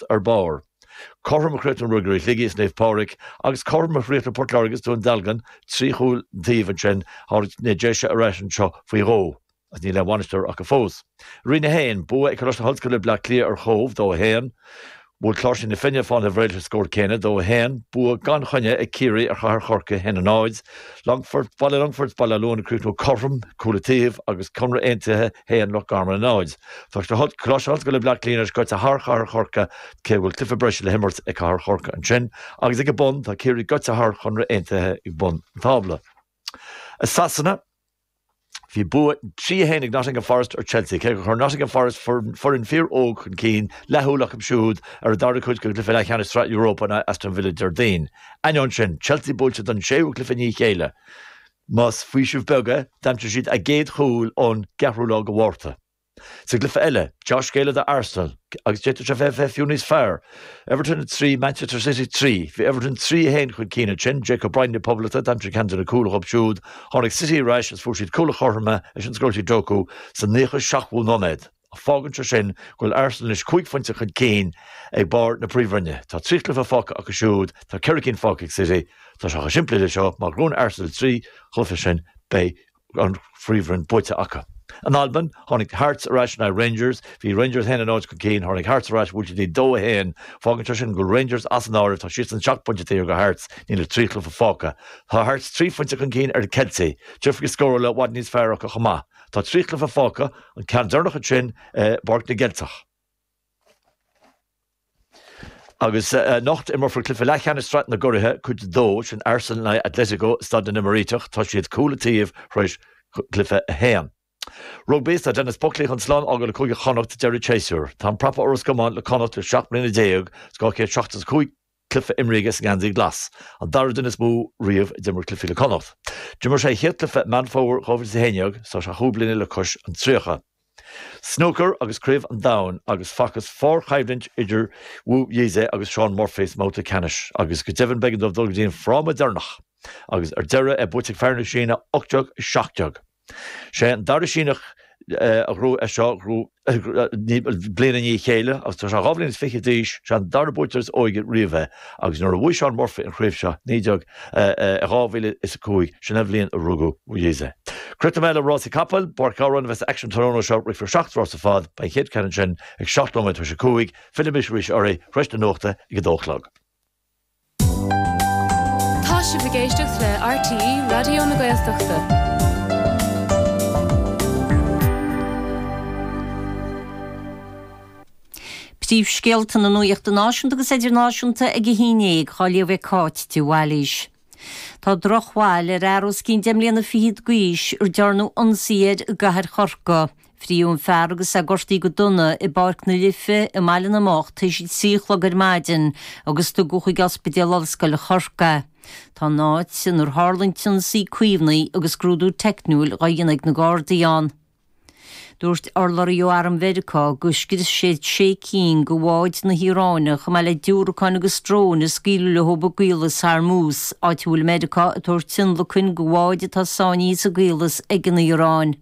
Chríost ar barr. Cothrom a chríochnaigh Ruagairí Shligigh is Naomh Pádraig, agus cothrom a chríochnaigh Port Láirge is Dún Dealgan, trí chúl an taobh ansin tháinig na Déise ar ais anseo faoi dhó, agus níl aon bhainisteoir acu fós. Roinn 1, Bua ag Coláiste na hOllscoile Bleá Cliath ar Chóbh, dó a haon. Bhuail Cláirsigh na Finne Fánaithe Bhré leis an scór céanna, dó a haon. Bua gan choinne ag Ciarraí ar Chathair Chorcaí, haon a náid. Longfort, Baile Longfort, Baile Átha Luain, chríochnaigh cothrom, cúl an taobh agus Conradh Aontaithe a haon Loch Garman a náid. Tá Coláiste na hOllscoile Bleá Cliath anois gaibhte thar Chathair Chorcaí cé go bhfuil cluiche breise le himirt ag Cathair Chorcaí ansin agus ag a bun tá Ciarraí gaibhte thar Chonradh Aontaithe ag bun an tábla. I Sasana. Bhí bua 3-1 ag Nottingham Forest ar Chelsea, cé gur chuir Nottingham Forest foireann fíoróg chun cinn, leathshúil acu siúd ar a dara cuid de chluiche leathcheannais Sraith Europa in aghaidh Aston Villa Déardaoin. Ainneoin sin, Chelsea buailte don séú cluiche i ndiaidh a chéile. Más faoiseamh beag é, d'aimsigh siad a gcéad chúl ón gceathrú lá de Mhárta. Sa gcluiche eile, dea-scéala do Arsenal agus d'fhéadfadh sé a bheith bheith fiú níos fearr. Everton 3, Manchester City 3. Bhí Everton 3, 1 chun cinn ansin, Jake O'Brien na Poblachta a d'aimsigh ceann de na cúil acu siúd, tháinig City ar ais agus fuair siad cúl an chothroim leis an scoiltí Doku sa 97ú nóiméad. Ach fágann sé sin go bhfuil Arsenal anois cúig phointe chun cinn ag barr na príomhroinne. Tá trí chluiche fágtha acu siúd, tá ceithre cinn fágtha ag City. Tá sé chomh simplí le seo, má ghnóthaíonn Arsenal na trí chluiche sin, beidh. an Phríomhroinn buaite acu. In Albain, tháinig Hearts ar ais in aghaidh Rangers. Bhí Rangers 1-0 chun cinn, tháinig Hearts ar ais, bhuail siad 2, 1. Fágann sé sin go bhfuil Rangers as an áireamh, tá siadsan seacht bpointe taobh thiar de Hearts, níl ach trí chluiche fágtha. Tá Hearts trí phointe chun cinn ar na Ceiltigh. Difríocht scórála i bhfad níos fearr acu chomh maith. Tá trí chluiche fágtha, an ceann deireanach ansin i bPáirc na gCeilteach. Agus anocht, imreofar cluiche leathcheannais Sraith na gCuraithe Cuid 2, sin Arsenal in aghaidh Atletico, i Staid na nÉimíríteach, tá siad cúl an taobh tar éis cluiche a haon. Rugbaí, is tá Denis Buckley chun slán a fhágáil le Cúige Chonnacht ag deireadh an tséasúir. Tá an prapa ó Ros Comáin le Connacht le seacht mbliana déag, is 275 cluiche imrithe sa ngeansaí glas, an dara duine is mó riamh a d'imir cluichí le Connacht. D'imir sé a chéad chluiche i Meán Fómhair 2011, so tá sé cúig bliana le cois an tríocha. Snúcar agus Craobh an Domhain agus facthas fíorchoimhlint idir Wu Yize agus Shaun Murphy sa mbabhta ceannais agus go deimhin b'éigean dóibh dul go dtí an fráma deireanach agus ar deireadh é buaite ag fear na Síne 18-17. Sé an dara Síneach a ghnóthaigh é seo, bliain i ndiaidh a chéile, agus tá sé dhá bhliain is fiche d'aois. Sé an dara buaiteoir is óige riamh é, agus nuair a bhuaigh Shaun Murphy an chraobh seo i naoi déag, 2005, sin an bhliain a rugadh Wu Yize. Críochnóidh mé le rásaí capall, i bPáirc Ghabhráin a bheas an t-aicsean tráthnóna seo, rithfear seacht rása ar fad, beidh an chéad cheann ansin ag seacht nóiméad tar éis a cúig, fillfidh mise arís oraibh tar éis na nuachta ag a dó a chlog. Tá sibh ag éisteacht le RTÉ Raidió na Gaeltachta. Príomhscéalta na nuachta náisiúnta agus idirnáisiúnta ag a haon dhéag, á léamh ag Cáit de Bhailís. Tá drochbhail ar fhear os cionn deich mbliana fichead d'aois ar dearnadh ionsaí air i gCathair Chorcaí. Fritheadh an fear agus é gortaithe go dona i bPáirc na Life i mBaile na mBocht tar éis a trí a chlog ar maidin agus tugadh chuig Ospidéal Ollscoile Chorcaí é. Tá an áit inar tharla an t-ionsaí caomhnaithe agus scrúdú teicniúil dá dhéanamh ag na Gardaí ann. Dúirt urlabhraí ó Arm Mheiriceá gur scrios siad sé cinn de bháid na hIaráine chomh maith le diúracáin agus dróin a scaoileadh leo i gCaolas Hormuz, áit a bhfuil Meiriceá ag tabhairt tionlacain do bháid atá sáinnithe sa gcaolas ag an Iaráin.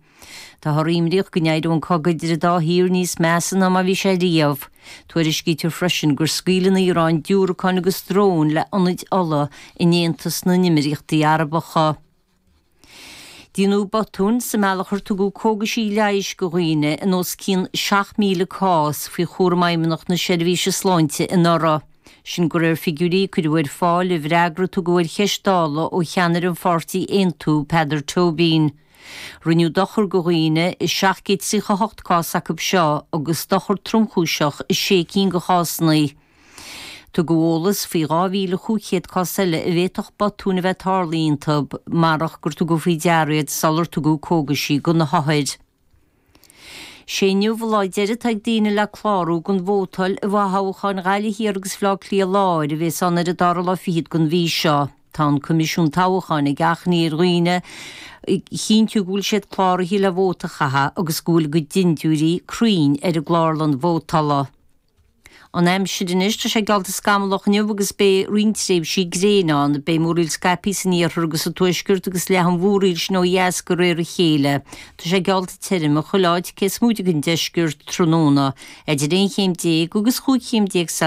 Táthar imníoch go n-éireodh an cogadh idir an dá thír níos measa ná mar a bhí sé riamh. Tuairiscítear freisin gur scaoil an Iaráin diúracáin agus dróin le hionad ola in Aontas na nEimiríochtaí Arabacha. Déanadh botúin sa mbealach ar tugadh cógaisí leighis go dhaoine i níos mó ná 7,000 cás faoi chúram Fheidhmeannacht na Seirbhíse Sláinte anuraidh. Sin go réir figiúirí a cuireadh ar fáil i bhfreagra a tugadh ar cheist Dála ó cheannaire an pháirtí Aontú, Peadar Tóibín. Rinneadh dochar do dhaoine i 738 cás acu seo agus dochar tromchúiseach i sé cinn de chásanna. Tugadh eolas faoi 2,500 cás eile a bhféadfadh botúin a bheith tarlaithe iontu marach gur tugadh faoi deara iad sular tugadh cógaisí do na hothair. Sé inniu lá deiridh atá ag daoine le clárú don vótáil i bhfothoghcháin Ghaillimh Thiar agus Bhaile Átha Cliath Láir a bhéas ann ar an dara lá fichead den mhí seo. Tá an Coimisiún Toghcháin ag achainí ar dhaoine a chinntiú go bhfuil siad cláraithe le vóta a chaitheamh agus go bhfuil a gcuid dindiúirí cruinn ar an gClárlann Vótala. An aimsir anois, tá sé geallta scamallach inniu agus beidh roinnt tréimhsí gréine ann. Beidh múraíl scaipthe san iarthar agus sa tuaisceart agus leathfaidh an mhúraíl sin ó dheas de réir a chéile. Tá sé geallta tirim chuile áit cé is móite den deisceart tráthnóna, idir aon chéim déag agus chúig chéim déag C.